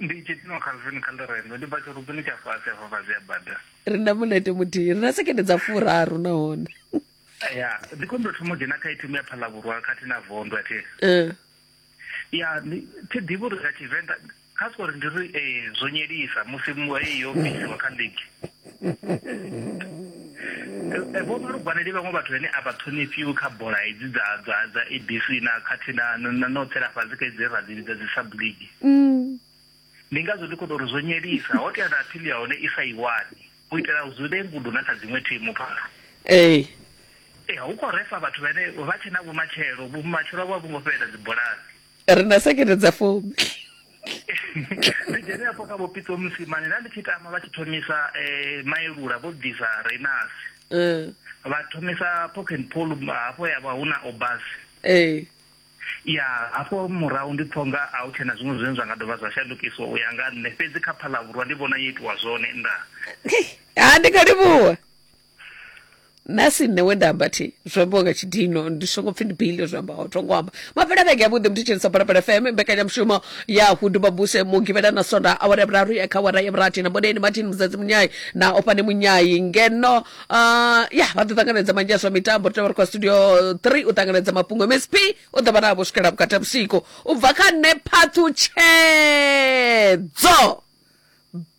Ndi itshi tino Calvin kha ḽirendo, ndi bva tshirubini tsha fhasi hafha fhasi ha bada. Ri na mulete muthihi, ri na sekende dza furaru nahone. Ya, ndi khou ndo thoma u dzhena kha ithimu ya Phalavhurwa khathihi na Vondo a thi. Eh. Ya, ndi thi ḓivhi uri nga Tshivenḓa kha sori ndi ri ee, zwo nyelisa musi mu heyi yo bvisiwa kha ligi. vho vha lugwaneli vhaṅwe vhathu vhane a vha ṱhonifhiwi kha bola hedzi dza dza dza abc na khathihi na no tsela fhasi kha idzi ra dzi vhidza dzi subligi mm. ndi ngazwo ndi khou tou ri zwo nyelisa ho tea na aphili ya hone i sa i wani u itela u zule ngudo na kha dziṅwe thimu phala ee ee hu khou refa vhathu vhane vha tshe na vhumatshelo vhumatshelo vho a vho ngo fhelela dzibolani ri na sekete dza fumi ndi dzhene afho kha vhopitso musimane nda ndi tshi tama vha tshi thomisa um maelula vho bvisa reinasi eh. vha thomisa poken pol hafho ya vha hu na obas eh. ya hafho murahu ndi pfo nga a u tshena zwiṅwe zwine zwa nga dovha zwa shandukiswa u ya nga nṋe fhedzi kha phalavhurwa ndi vhona yo itiwa zwone nda ha ndi nga livhuwa nṋe si nṋe we nda amba thi zwo ambiwa nga tshidino ndi songo pfhi ndi bile zwo amba o thongo amba mafhela vhege ya vhuḓi muthu dzhenisa balapala fm mbekanyamushumo ya hundu mabuse mugivhela na sonda awara ya vhuraru ya kha awara ya vhurathi na mboneni martin muzadzi munyayi na ofhane munyayi ngeno uh, ya vha ḓo ṱanganedza manzhi a zwa mitambo ri tovha ri kwa studio 3 u ṱanganedza mafhungo msp u ḓo vha navho swikela vhukati ha vhusiku u bva kha nṋe phathu tshedzo